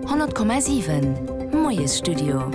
100,7 Moiesstudio.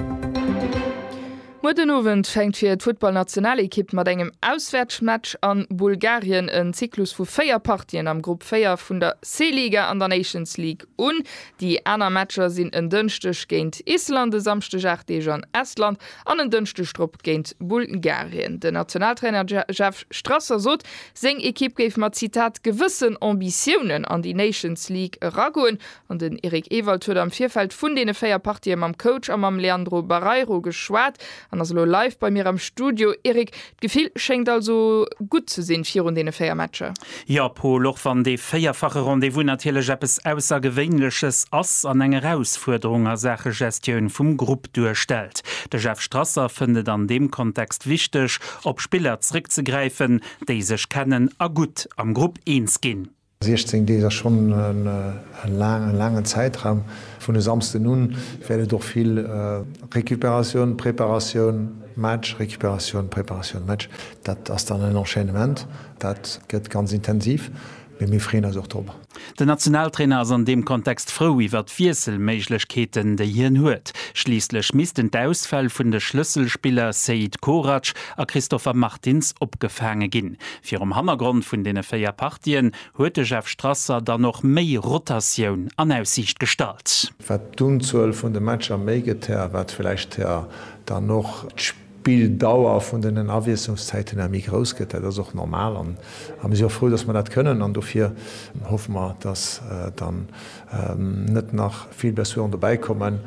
Muer den Owend fänkt fir d'Futtballnationalekipp mat engem Auswäertsmatch an Bulgarien en Zyklus vu 4 Partien am Grupp 4 vun der C-Liga an der Nations League un. Déi aner Matcher sinn en Dënschdeg géint Island, e Samschdeg 8 Deeg an Estland an en Dënschdeg drop géint Bulgarien. Den Nationaltrainer Jeff Strasser sot, Seng Ekipp géif mat, Zitat, gewëssen Ambitiounen an déi Nations League eragoen. An den Eric Ewald huet am Virfeld vun deene 4 Partië mam Coach a mam Leandro Barreiro geschwat an ass elo live bei mir am Studio. Eric, d'Gefill schéngt also gutt ze sinn virun deene 4 Matcher? Jo, Pol, och wann dee véierfache Rendez-vous natierlech eppes Aussergewéinleches ass an eng Erausfuerderung a Saache Gestioun vum Grupp. duerstellt. De Jeff Strasser fënnt et an deem Kontext wichteg, op Spiller zréckzegräifen, déi sech kennen a gutt am Grupp eens ginn. 16 Deeg ass schonn e laangen Zäitraum. Vun e Samsden un wäert et och vill Recuperatioun, Preparatioun, Match, Recuperatioun, Preparatioun, Match. Dat ass dann en Enchaînement, dat gëtt ganz intensiv. Mee mir freeën eis och drop. Den Nationaltrainer ass an deem Kontext frou iwwert d'Wiesselméiglechkeeten, déi hien huet. Schliisslech missten d'Ausfäll vun de Schlësselspiller Seid Korac a Christopher Martins opgefaange ginn. Virum Hannergrond vun deene véier Partien huet de Jeff Strasser dann och méi Rotatioun an Aussiicht gestallt. Wat d'Unzuel vun de Matcher méi gëtt, här, wat vläicht, här, dann och D'Bilddauer vun den Awiesslungszäiten ëmmer méi grouss gëtt. Dat ass och normal an mir si och frou, datt mer dat kënnen an dofir hoffe mer, datt dann net nach vill Blessuren dobäi kommen.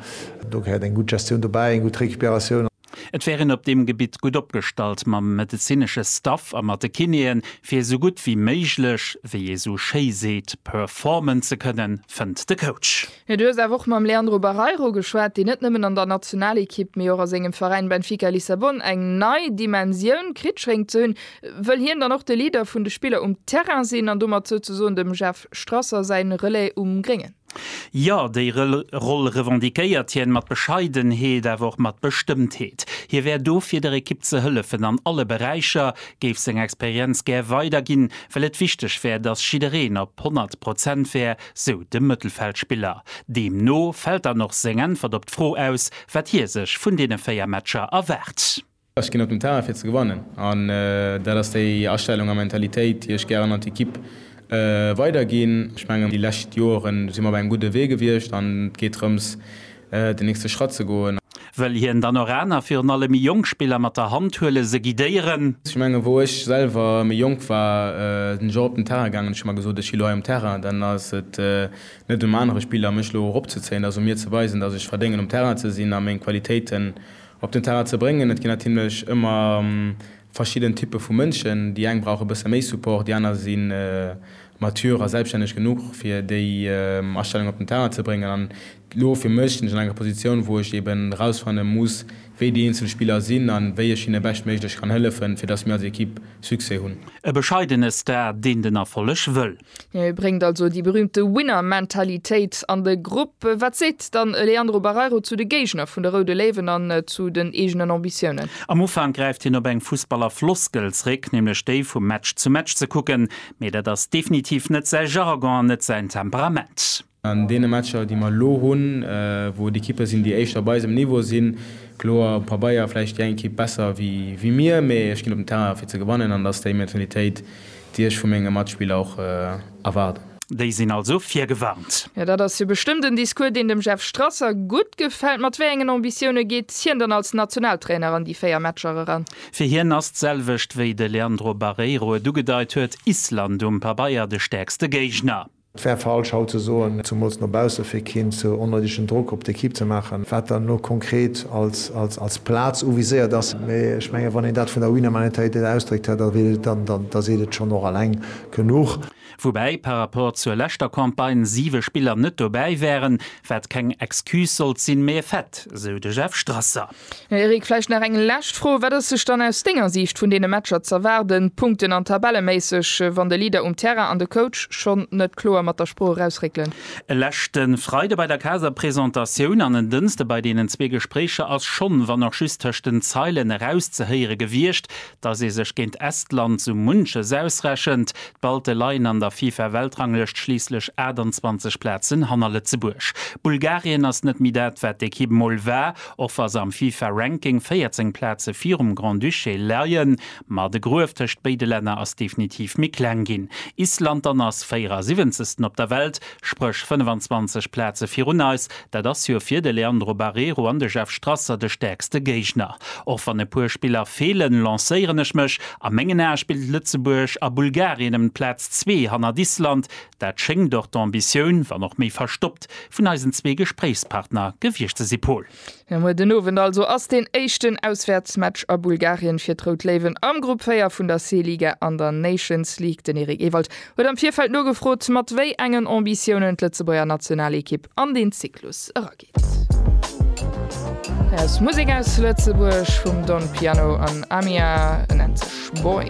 Do gehéiert eng gutt Gestioun dobäi, eng gutt Recuperatioun. Et wär een op deem Gebitt gutt opgestallt mam medezinesche Staff a mat de Kinéen, fir esou gutt wéi méiglech, wéi ee sou schéi seet, performen ze kënnen, fënnt de Coach. Mee du hues awer och mam Leandro Barreiro geschwat, deen net nëmmen an der Nationalekipp, mee och a sengem Veräin Benfica Lissabon eng nei Dimensioun kritt schéngt ze hunn. Wëll hien dann och de Leader vun de Spiller um Terrain sinn an domat souzesoen dem Jeff Strasser säi Relais um Gréngen? Jo, déi Roll revendiquéiert hien, mat Bescheidenheet, awer och mat Bestëmmtheet. Hie wär do fir der Ekipp ze hëllefen an alle Beräicher, géif seng Experienz gär weiderginn, well et wichteg wär, datt jiddereen op 100 Prozent wär, sou de Mëttelfeldspiller. Deemno fält dann och seng Äntwert op d'Fro aus, wat hie sech vun deene 4 Matcher erwaart. Ech ginn op den Terrain fir ze gewannen an dat ass déi Astellung a Mentalitéit, déi ech gären an d'Ekipp weiderginn. Ech mengen, déi lescht Joren si mer op engem gudde Wee gewiescht an et geet drëms, den nächste Schratt ze goen. Wëll hien dann och aner, virun allem méi jonk Spiller mat der Hand huelen, se guidéieren? Ech mengen, wou ech selwer méi jonk war, sinn ech och op den Terrain gaangen, ech hu mer gesot, ech si elo hei um Terrain, dann ass et net um anere Spiller mech elo eropzezéien, et ass u mir ze weisen, datt ech verdéngen um Terrain ze sinn a meng Qualitéiten op den Terrain ze bréngen. Et ginn natierlech ëmmer verschidden Typpe vu Mënschen, déi eng brauche bësse méi Support, déi aner si mature a selbstänneg genuch fir déi Astellung op den Terrain ze bréngen an elo fir mech sinn ech an enger Positioun wou ech eben erausfanne muss wéi déi eenzel Spiller sinn an wéi ech hinne beschtméiglech kann hëllefen fir dass mir als Equipe Succès hunn. E bescheidene Star, deen den Erfolleg wëll. Hie bréngt also déi berüümte Winner-Mentalitéit an de Grupp. Wat seet dann e Leandro Barreiro zu de Géigner vun de Roude Léiwen an zu den eegenen Ambitiounen? Am Ufank gräift hien op eng Fussballer-Floskel zréck, nämlech déi vum Match zu Match ze kucken, Mee dat ass definitiv net säi Jargon an net säin Temperament. An deene Matcher, déi mer elo hunn, wou et Ekippe sinn, déi éischter op eisem Niveau sinn, kloer um Pabeier vläicht déi eng Ekipp besser wéi mir, mee ech ginn op den Terrain fir ze gewannen an dat ass déi Mentalitéit, déi ech vu menge Matspiller och erwaarden. Déi sinn also virgewarnt. Jo, dat ass jo bestëmmt en Discours, deen dem Jeff Strasser gutt gefält. Mat wéi engen Ambitioune geet hien dann als Nationaltrainer an déi véier Matcher eran? Fir hien ass d'selwecht wéi de Leandro Barreiro et ugedeit huet, Island um Pabeier de stäerkste Géigner. Et wär falsch haut ze soen, zemools no bausse fir keen ze onnoidegen Drock op d'Ekipp ze maachen, wat dann elo konkret als Plaz uviséiert ass. Mee ech menge wann een dat vun der Winner Mentalitéit ausdréckt, da seet et schonn och eleng genuch. Woubäi par rapport zur leschter Campagne siwe Spiller net dobäi wären, wat keng Excuse sollt sinn, mee e Fait, sou de Jeff Strasser. Eric, vläicht nach eng lescht Fro, Wat ass sech dann aus denger Siicht vun deene Matcher z'erwaarden, punkten an tabelleméisseg, wann de Leader um Terrain an de Coach schonn net kloer mat der Sprooch erausréckelen? E leschte Freide bei der Kaderpresentatioun an en Dënste bei deenen zwee Gespréicher ass schonn, wann och just tëscht den Zeilen, erauszehéiere gewiescht, Datt ee sech géint Estland sou munches ausrechent, d'Balte leien an der FIFA-Weltranglëscht schliisslech 28 Plazen hanner Lëtzebuerg. Bulgarien ass net méi dat, wat d'Ekipp mol war, och wa se am FIFA-Ranking 14 Plaze virum Grand-Duché leien. Ma de Gruef tëscht béide Länner ass definitiv méi kleng ginn. Island dann ass 74. op der Welt, spréch 25 Plaze virun eis, Dat ass jo fir de Leandro Barreiro an de Jeff Strasser de stäerkste Géigner. Och wann e puer Spiller feelen, lancéieren ech mech, a mengen Ae spillt Lëtzebuerg a Bulgarien ëm d'Plaz zwee hannert Island. Dat schéngt och d'Ambitioun, wann och méi verstoppt, vun eisen zwee Gespréichspartner gewiescht ze si, Pol. Mir muer den Owend also ass deen éischten Auswäertsmatch a Bulgarien fir d'Rout Léiwen am Grupp 4 vun der C-Liga an der Nations League. Den Eric Ewald Huet am Virfeld nogefrot, mat wéi engen Ambitiounen d'Lëtzebuerger Nationalekipp an den Zyklus erageet. Musek aus Lëtzebuerg vum Don Piano an Amia nennt sech Boy.